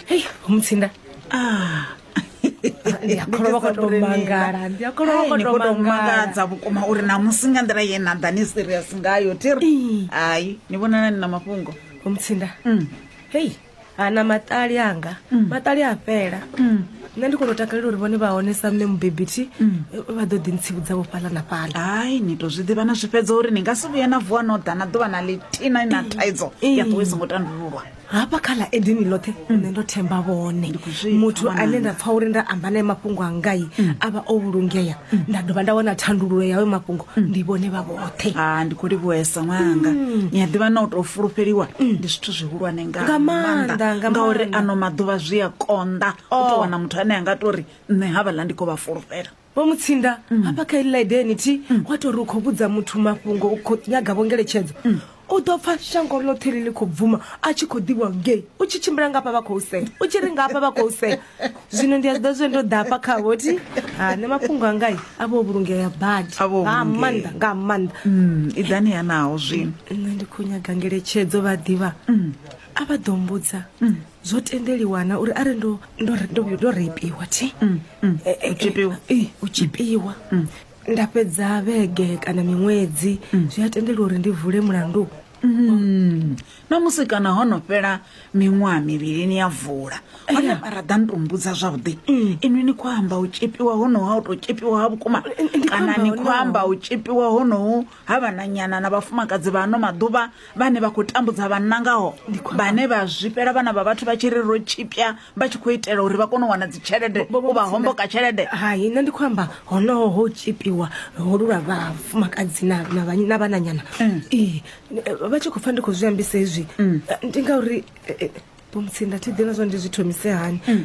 hei mutsinda ah. ndi a kholwa vha khou tou mangala ndi a kholwa vha khou tou mangala mangadza vhukuma uri na musi nga nḓila ye na ḓa ni serious ngayo thi ri hayi ni vhonana ni na mafhungo mutsinda hei ana maṱali anga maṱali a fhela nṋe ndi kono takalela uri vhone vha hone sa mme mubebi thi vha ḓo ḓi ntsivhudza vho fhaḽa na fhaḽa hai ni to zwi ḓivha na zwi fhedza uri ni nga si vhuye na vuwa no ḓa na ḓuvha na ḽitina na thaidzo ya ṱuwe songo tandululwa hafha kha ḽa edini ḽoṱhe nṋe ndo themba vhone muthu ane nda pfha uri nda amba naye mafhungo angai a vha o vhulungea nda dovha nda wana thandululo yawe mafhungo ndi vhone vha vhoṱhe ha ndi khou livhuhesa ṅwananga mm. ni a ḓivha na u tou fulufheliwa mm. ndi zwithu zwihulwane nga maanḓa ngauri ano maḓuvha zwi a konḓa u oh. tou wana muthu ane a nga tou ri nṋe havhaḽa ndi khou vha fulufhela vho mutsinda mm. hafha kha iḽi ḽa idenity wa tou ri u khou vhudza muthu mafhungo u khou nyaga vhongeletshedzo U ḓo pfa shango ḽoṱhe ḽi ḽi khou bvuma a tshi khou ḓivhiwa ngei u tshi tshimbila nga hafha vha khou sea u tshi ri nga hafha vha khou sea zwino ndi a zwi ḓa zwe ndo ḓa hafha khavho ti ha nṋe mafhungo angai a vho vhulungea badi A vho nga vhulungea. maanḓa nga maanḓa Mm, i ḓani ha naho zwino nṋe ndi khou nyaga ngeletshedzo vha ḓivha a vha ḓo mbudza zwo tendeliwa na uri arali ndo ndo ndo- ndo reipiwa thi Eh, eh, eh, tshipiwa. eh, u tshipiwa nda fhedza vhege kana miṅwedzi mm. zwi a tendela uri ndi vule mulandu mm. na musi kana ho no fhela miṅwaha mivhili ni ya vula hone eh. mara ḓa ni to mbudza zwavhuḓi mm. inwi ni khou amba u tshipiwa honoha u tou tshipiwa ha vhukuma kana ni khou amba u tshipiwa honohu ha vhananyana na vhafumakadzi vha ano maḓuvha vhane vha khou tambudza vhanna ngaho vhane vha zwifhela vhana vha vhathu vha tshi ri ro tshipya vha tshi khou itela uri vha kone u wana dzitshelede u vha homboka tshelede hai nṋe ndi khou amba honoho ho tshipiwa holu lwa vhafumakadzi na na vha- na vhananyana Mm. ee vha tshi khou pfa ndi khou zwi ambisa hezwi Mm. eh, ndi ngauri eh, eh, vho mutsinda thi ḓivha zwa ndi zwi thomise hani Mm.